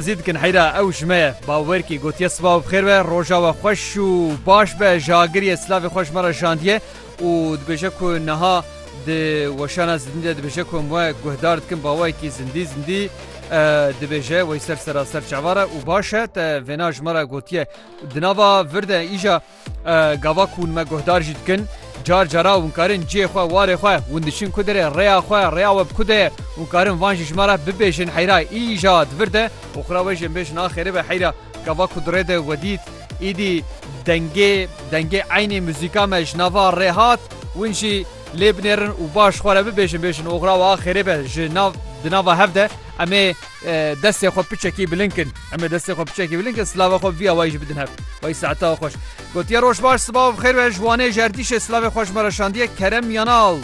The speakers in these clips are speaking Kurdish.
Zî dikin heyra ew ji me ye. Bawerkî gotiye siba û bixêr be, roja we xweş û baş be, ji agiriyê silavê xwe ji me re jandiye û dibêje ku niha di weşana zindî de dibêje ku em we guhdar dikin bawayekî zindî zindî dibêje wey ser seraser çavar e û baş e te vêna ji me re gotiye. Di nava vir de îja. Gava ku hûn me guhdar jî dikin, car cara hûn karin cihê xwe, warê xwe, hûn diçin ku dire, rêya xwe, rêya we bi ku de ye, hûn karin van jî ji me re bibêjin heyra îja di vir de û xwira we jê bêjin a xêrê be heyra gava ku di rê de we dît, îdî dengê dengê eynê muzîka me ji nava rê hat, hûn jî lê binêrin û baş xwe re bibêjin bêjin oxira we a xêrê be ji nav di nava hev de em ê destê xwe piçekî bilind kin. Em ê destê xwe piçekî bilin ke silava xwe viya wayî jî bidin hev. Wayî saeta xweş. Gotiye roj baş siba û bixêr be ji Wanê ji erdîşê silavê xwe ji me re şandiye Kerem Yanal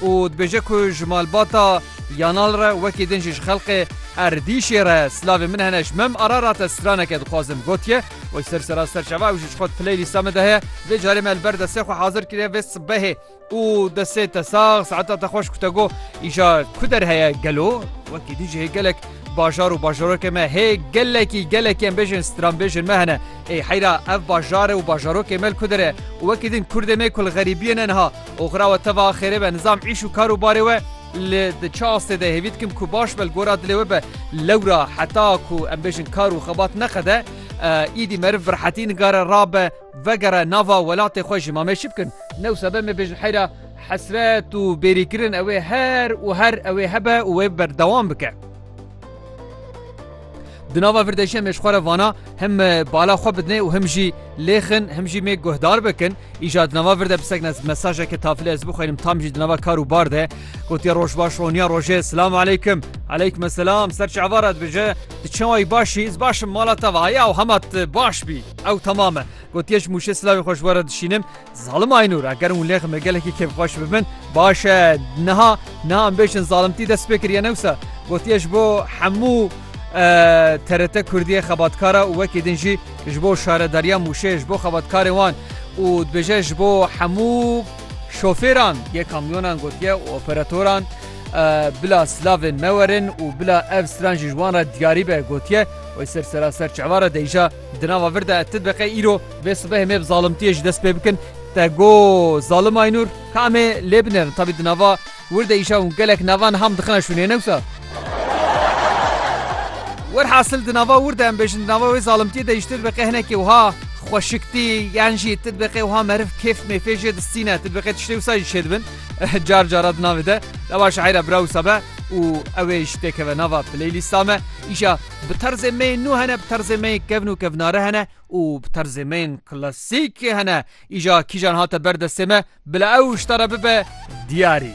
û dibêje ku ji malbata Yanal re wekî din jî ji xelqê erdîşê re silavên min hene ji Mem Ararat ez straneke dixwazim gotiye Wayî ser sera serçava ew jî ji xwe di playlîsta min de heye. Vê carê me li ber destê xwe hazir kiriye vê sibehê. û destê te sax saeta te xweş ku te got îşa ku der heye gelo wekî dî jî hê gelek bajar û bajarokê me hê gelekî gelekî em bêjin stranbêjin me hene ê heyra ev bajarê û bajarokê me li ku dire û wekî din kurdê me ku li xerîbiyê ne niha oxira we teva xêrê be nizam îş û kar û barê we li di çi astê de hêvî dikim ku baş be li gora dilê we be lewra heta ku em bêjin kar û xebat neqede êdî meriv bi rehetî nigare rabe Vegere nava welatê xwe jî ma me çi bikin? Ne wisa be me bêjin heyra hesret û bêrîkirin ew ê her û her ew ê hebe û wê berdewam bike. Di nava vir de jî em ê ji xwe re vana him bala xwe bidinê û him jî lêxin him jî mêk guhdar bikin. Îja di nava vir de bi sekne mesajeke tafilê ez bixwînim tam jî di nava kar û bar de gotiye roj baş roniya rojê silam aleykim aleykim selam ser çi ava re dibêje tu çawa yî baş î ez baş im mala te va ya û hema tu baş bî. Ew temam e. Gotiye ji Mûşê silavê xwe ji we re dişînim. Zalim Aynûr, eger hûn lêxim ê gelekî kêfxweş bibin, baş e. Niha, niha em bêjin zalimtî dest pê kiriye ne wisa. Gotiye ji bo hemû TRT Kurdiyê xebatkara û wekî din jî ji bo şaredariya Mûşê, ji bo xebatkarê wan û dibêje ji bo hemû şofêran yê kamyonan gotiye û operatoran bila silavên me werin û bila ev stran jî ji wan re diyarî be gotiye. Wê ser seraser çava re deyja. Di nava vir de ti dibeqe îro vê sibehê me bi zalimtiyê ji dest pê bikin. Te got zalim Aynûr ka em ê lê binerin. Tabî di nava wir de îşew û gelek nava niha min dixine şûnê ne wisa. Werhasil di nava wir de em bêjin di nava wê zalimtiyê de jî tu dibeqe hinekê wiha xweşiktî yan jî tu dibeqe wiha meriv kêf mêfê jê distîne tu dibeqe tiştê wisa jî şêdibin car cara di navê de. Ewa şaîra bira wisa be û ew ê jî têkeve nava playlîsta me. Îşa Bi terzê me yên nû hene, bi terzê me yên kevn û kevnare hene û bi terzê me yên klasîkê hene. Îja kîjan hate ber destê me, bila ew ji te re bibe diyarî.